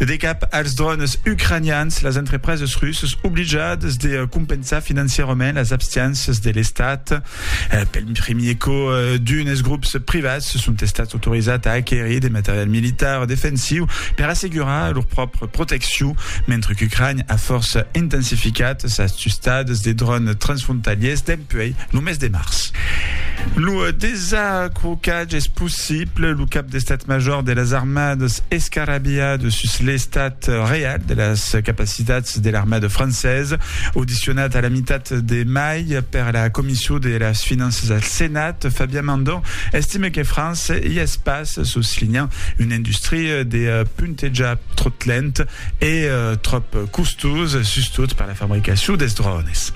De cap als drònes ucranians, las entrepreses russas oblijadas de compensar financièrament las abstiéncias de l'Estat. Pel primier còp, d'unes grops privats son estats autorizats a aquerir de material militar defensiu per assegurar lor pròpria proteccion, mentre qu'Ucrània a fòrça intensificat sas tustadas de drònes transfrontalièrs dempuèi lo mes de març. Lo desacrocatge es pus Siple, lo cap d'estat major de las armadas escarrabilha de sus l'estat real de las capacitats de l'armada francesa. Audicionat a la mitat de mai per la Comission de las Finanças al Senat, Fabien Mandon estime que França i es pas, soslinhant una industria de puntejar tròt lent e tròp costosa, sustot per la fabricacion dels drones.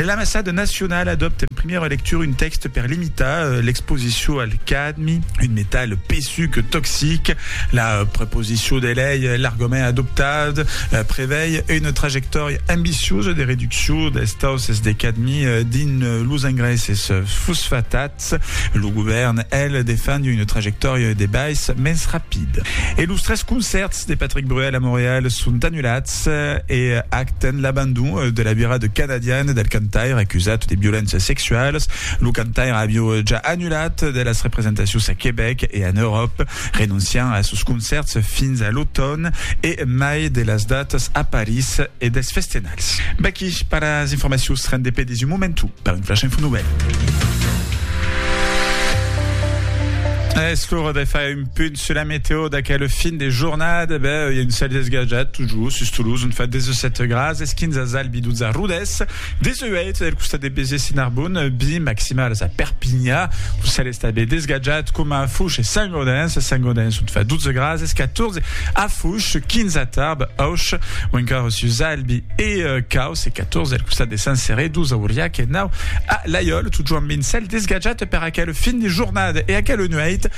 L'ambassada nacionala adopte en primièra lectura un tèxte per limitar Tà l'exposicion al cadmi, un metal pesuc toxic, la proposicion de lei, l'argument adoptat, prevei una trajectòria ambiciosa de reduccion dels tausses de cadmi dins los engraisses fosfatats. Lo govèrn, el, defend una trajectòria de baissa mens rapida. E los tres concèrts de Patrick Bruel a Montreal son anulats. Eth hè ac ten l'abandon de la vira de canadian del cantaire acusat de violéncias sexualas. Lo cantaire aviu ja annulat de las representacions a Quebec e en Euròpa, renonciant a sos concèrts fins a l'automn e mai de las datas a París e dels festenals. Vaquí pas las informacions, rendez pé des un momentu per un Flash Info Nouvèl. Es l'ora de far un. Punt sur la météo d'aquel fin de jornada, ben, il y a un cèl desgajat, tot just, sus Toulouse, on fa 17 grads, es 15 a Zalbi, 12 a Rodès, 18 del costat de Béziers e Narbonne, bi maximals a Perpigna, lo cèl es tanben desgajat, coma a Fouch e Saint-Gaudens, a Saint-Gaudens on fa 12 grads, es 14 a Fouch, 15 a Tarbes, Auch, o encara sus Zalbi e Caus, es 14 del costat de Saint-Céré, 12 a Auriac e 9 a Laiòl, tot just amb un cèl desgajat per aquel fin de jornada, e aquela nuèit,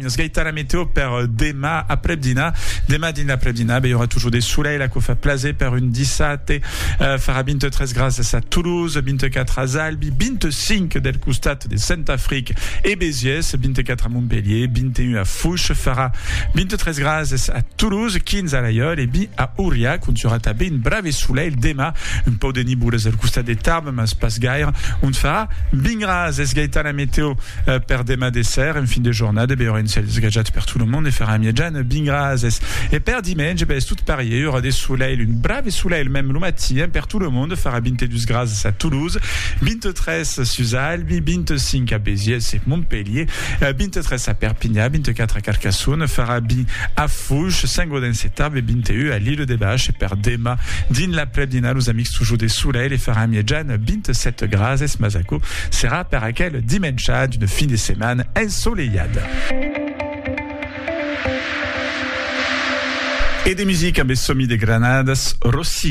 Esgaita la meteo per demà aprèp dinar. Demà dins l'aprèp dinar, be, i aurà totjor de solelh, aquò fa plaser per un dissabte. Farà 23 grases a Toulouse, 24 as Albi, 25 del costat de Saint-Afric e Béziers, 24 a Montpelhier, 21 a Fouche. Farà 23 grases a Toulouse, 15 a Laiòl e 20 a Auriac, ont i aurà tanben un brave solelh demà. Un pauc de nibolas del costat de Tarbes. mas pas gaire, ont fa bin ras, es gaitan la meteo per demà de ser, en fin de jornada be auren cèls gajats per tot lo monde e farà mièjan bin ras, es e per dimenge be es tot parier, aurà de solelh, un brave solelh mèm lo matin per tot lo monde, farà 22 grases a Toulouse, 23 sus Albi, 25 a Béziers e Montpellier, 23 a Perpinyà, 24 a Carcassonne, farà bin a Fouch, Saint-Gaudens. Ven se tab e binte ua a l'Ilo de Bach e per dema dins l'aprèp-dinar los amics tujor de solelh e faràn miejan 27 grases mas aquò serà per aquel dimencha d'una fin de setman ensolelhada. E de musica, be somi de Granadas Rossi.